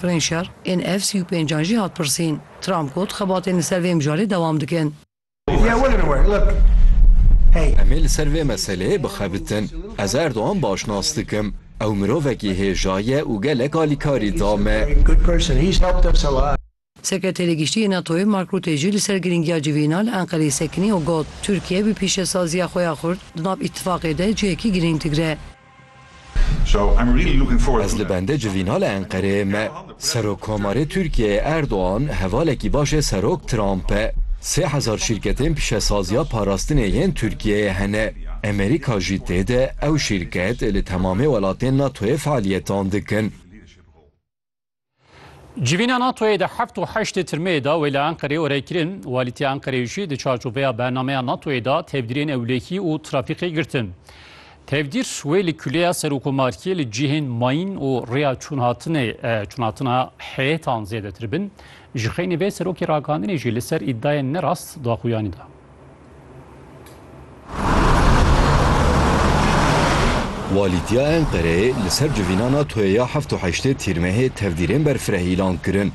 Rên şer ên ev sî û pênc an jî hat pirsîn. Trump got, Xebatên li ser vê mijarê dewam dikin. Em ê li ser vê meseleyê bixebitin. Ez Erdogan baş nas dikim. Ew mirovekî hêja ye û gelek alîkarî da me. Sekreterê Giştî yê NATO'yê Mark Rutte jî li ser girîngiya civîna li Enqereyê sekinî û got, Tirkiye bi pîşesaziya xwe ya xurt di nav îtîfaqê de cihekî girîng digre. Ez li bende civîna li Enqereyê me. Serokkomarê Tirkiyeyê Erdogan hevalekî baş ê Serok Trump e. Sê hezar şîrketên pişesaziya parastinê yên Tirkiyeyê hene. Amerîka jî tê de, ew şîrket li temamê welatên NATO'yê fealiyetan dikin. Civîna NATO'yê di heft û heştê tirmeyê de wê li Enqerê orey kirin. Walîtiya Enqereyê jî di çarçoveya bernameya NATO'yê de tevdîrên ewlehî û trafîkê girtin. Tevdîr wê li kuleya serokomarkê li cihên mayîn û rêya çûnhatinê çûnhatina heyêtan zêdetir bin. Ji xeynî vê serokê ragihandinê jî li ser îdayên nerast daxuyanî da. Walîtiya Enqereyê li ser civîna NATO'yê ya heft û heştê Tîrmehê tevdîrên berfireh îlan kirin.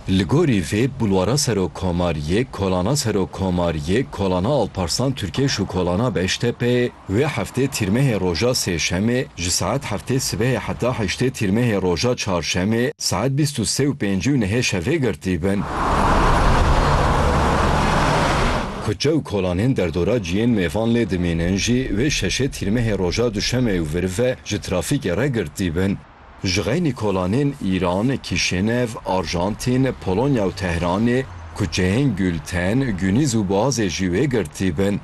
Li gorî vê bulwara serokkomariyê kolana serokkomariyê, kolana Alparslan Tirkeş û kolana Beştepeyê Vê heftê tîrmehê roja sêşemê ji saet heftê sibehê heta heştê tîrmehê roja çarşemê saet bîst û sê û pêncî û nehê şevê girtîbin. Kuçe û kolanên derdora ciyên mêvan lê dimînin jî vê şeşê tîrmehê roja duşemê û vir ve ji trafîkê re girtîbin. Jixeynî kolanên Îran, Kîşênev, Arjantîn, Polonya û Tehranê, kuçeyên Gulten, Gunîz û Boazê jî wê girtî bin.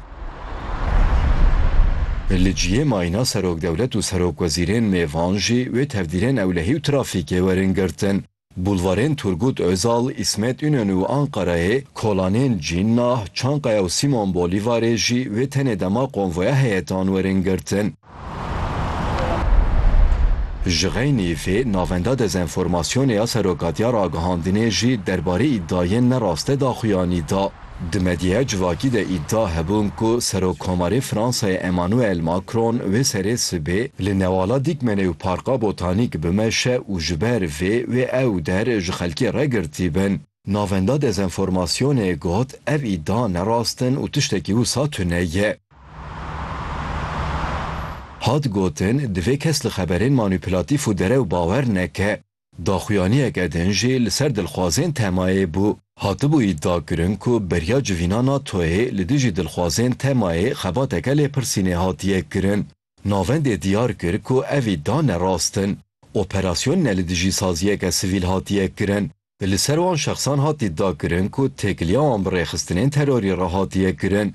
Li cihê mayîna Serokdewlet û Serokwezîrên mêvan jî wê tevdîrên ewlehî û trafîkê werin girtin. Bulvarên Turgut Ozal, Îsmet Înönü û Ankarayê, kolanên Cinnah, Çankaya û Simon Bolîvarê jî wê tenê dema konvoya heyetan werin girtin. Ji xeynî vê, Navenda Dezenformasyonê ya Serokatiya Ragihandinê jî derbarê îdayên ne raste daxuyanî da. Di medyaya civakî de îdia hebûn ku Serokkomarê Fransayê Emmanuel Macron wê serê sibê li Newala Dîkmenê û Parka Botanîk bimeşe û ji ber vê wê ew der ji xelkê re girtî bin. Navenda dezenformasyonê got ev îdia ne rast in û tiştekî wisa tune ye. Hat gotin, divê kes li xeberên manîpulatîf û derew bawer neke. Daxuyaniyeke din jî li ser dilxwazên TEMA'yê bû. Hatibû îdiakirin ku beriya civîna NATO'yê li dijî dilxwazên TEMA'yê xebateke lêpirsînê hatiye kirin. Navendê diyar kir ku ev îdia ne rast in. Operasyon ne li dijî saziyeke sivîl hatiye kirin. Li ser wan şexsan hat îdiakirin ku têkiliya wan bi rêxistinên terorî re hatiye kirin.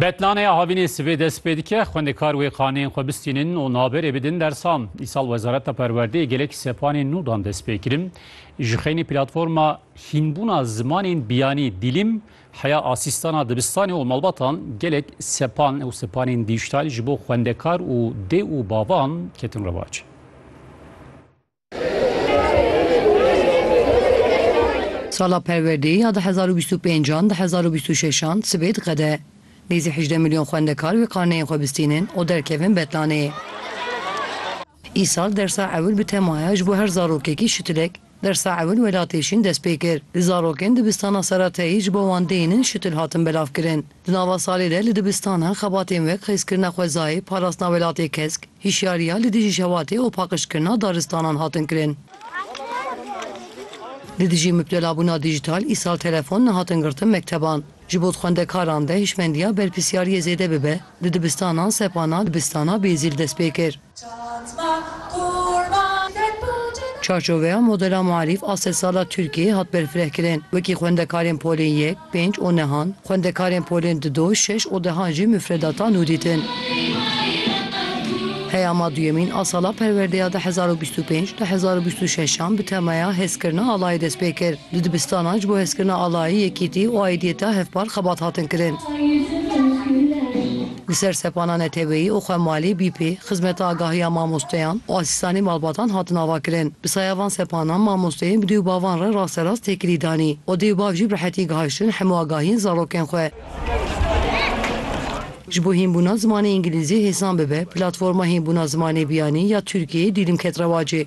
Betlanê havînê sivê dest pê dike, xwendekar wê xaneyên xwe bistînin û naberê bidin dersan. Îsal Wezareta Perwerdeyê gelek sepanên nû dan dest pê kirin. Ji xeynî platforma hînbûna zimanên biyanî Dîlîm, heya asîstana dibistanê û malbatan gelek sepan û sepanên dîjîtal ji bo xwendekar û dê û bavan ketin rewac. Sala perwerdeyî ya di hezar û bîst û pênc an di hezar û bîst û şeş an sibê diqede. Nêzî hejdeh milyon xwendekar wê karneyên xwe bistînin û derkevin betlanê. Îsal dersa ewil bi temaya ji bo her zarokekî şitilek dersa ewil welatê şîn dest pê kir. Di zarokên dibistana Serateyî ji bo wan dêynin şitil hatin belavkirin. Di nava salê de li dibistanan xebatên wek xizkirina xwezayê, parastina welatê kesk, hişyariya li dijî şewatê û paqijkirina daristanan hatin kirin. Li dijî mipdelabûna dîjîtal îsal telefon nehatin girtin mekteban. Ji bo di xwendekaran de hişmendiya berpirsyariyê zêde bibe, di dibistanan sepana dibistana Bêzî li dest pê kir. Çarçoveya modela Muarîf a sedsala Tirkiyeyê hat berfirehkirin. Wekî xwendekarên polên yek, pênc û nehan, xwendekarên polên di do, şeş û dehan jî mufredata nû dîtin. Peyama duyemîn a sala perwerdeya du hezar û bîst û pênc, du hezar û bîst û şeş-an bi temaya Hezkirina Alayî dest pê kir. Di dibistanan ji bo hezkirina alayî, yekîtî û aîdiyeta hevpar xebat hatin kirin. Li ser sepana neteweyî û xwe malê bî pê, xizmeta agahiya mamosteyan û asîstanê malbatan hatin avakirin. Bi saya van sepanan mamosteyên bi dê û bavan re rasterast têkilî danî û dê û bav jî bi rehetî gihiştin hemû agahiyên zarokên xwe. Ji bo hînbûna zimanê îngilîzî hêsan bibe, platforma hînbûna zimanê biyanî ya Tirkiyeyê dîlim ket rewacê.